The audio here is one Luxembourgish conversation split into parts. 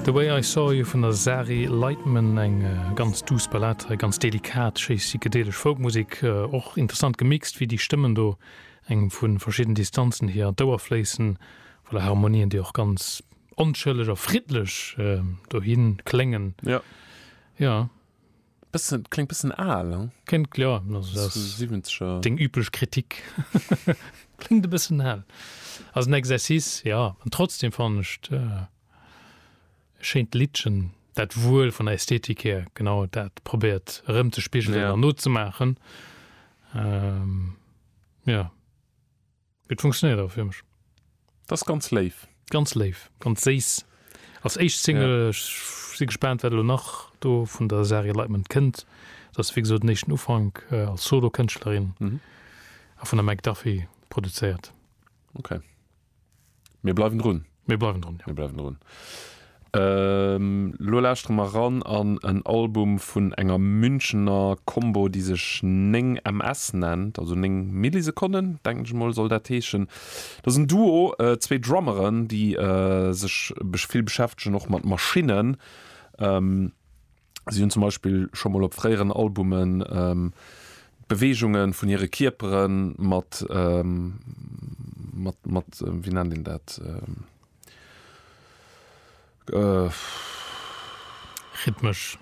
The Way I Saw You vun der Sari Lightman, eng ganz duuss Ballad, hei ganz delikat, schéi psychedelesch Folkmusek, och interessant gemixt, wéi déi Stëmmen do engem vu verschidden Distanzen hier an d'Ouer fléissen, voilà, Harmonien, déi och ganz onschëlleg a friddlech dohi kléngen. Jo. Bëssen, kléngt bëssen aal, ne? Kléngt, jo, also dat ass deng üblech Kritik. Kléngt e bëssen aal. Ass en Exercice, jo. An trotzdem fannen ech et e schéint Liddchen, dat wuel vun der Ästhetik hier genau dat probéiert erëmzespigelen an nozemaachen. Jo. Et funktionéiert awer fir mech. Dass ganz léif. Ganz léif, ganz séiss als éischt Single. Yeah. Ech si gespaant wat elo nach do vun der Saria Lightman kënnt. Dat ass wéi gesot den éischten Ufank als Solokënschtlerin mhm. a vun der McDuffie produzéiert. Okay. Mir bleiwen drun. Mir bleiwen drun. Mir bleiwen drun. Ehm lo lauschtere mer ran an en Album vun enger Münchener Combo déi sech 9 MS nennt, also 9 Millisekonnen denken ech mol soll dat heeschen. Dat ass en Duo, zwee Drummeren déi sech vill beschäftegen och mat Maschinnen. Si hunn zum Beispill scho mol op fréieren Albumen d'Beweegunge vun hire Kierpere mat, mat, mat, wéi nennt een dat? Rhythmesch.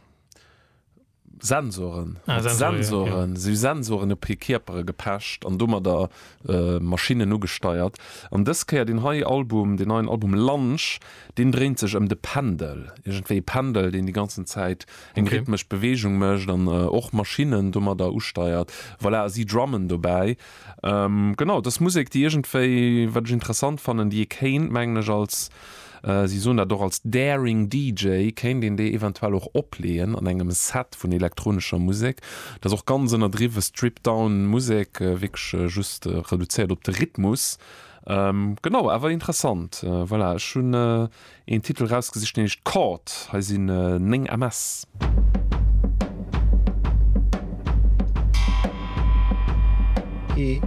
Sensoren. Ah, Sensoren, jo. Sensoren. Si hu Sensoren op hir Kierpere gepecht an domadder Maschinnen ugesteiert. An dës Kéier deen hei Album, deen neien Album Lunch, deen dréint sech ëm de Pendel. Iergendwéi e Pendel, deen déi ganzen Zäit eng rhythmesch Beweegung mécht an och Maschinnen domadder usteiert. Voilà, a si drummen dobäi. Genau, et ass Musek, déi iergendwéi, wat ech interessant fannen, déi ee kéint, mengen ech, als. Si soen dat och als Daring DJ kéint een déi eventuell och opleeën an engem Set vun elektronescher Musek. Dat ass och ganz ënnerdriwwe Strip-Down Musek, wierklech just reduzéiert op de Rhythmus. Genau, awer interessant. Voilà, ech hunn een Titel erausgesicht, deen heescht Caught. Hei sinn 9 ms. E.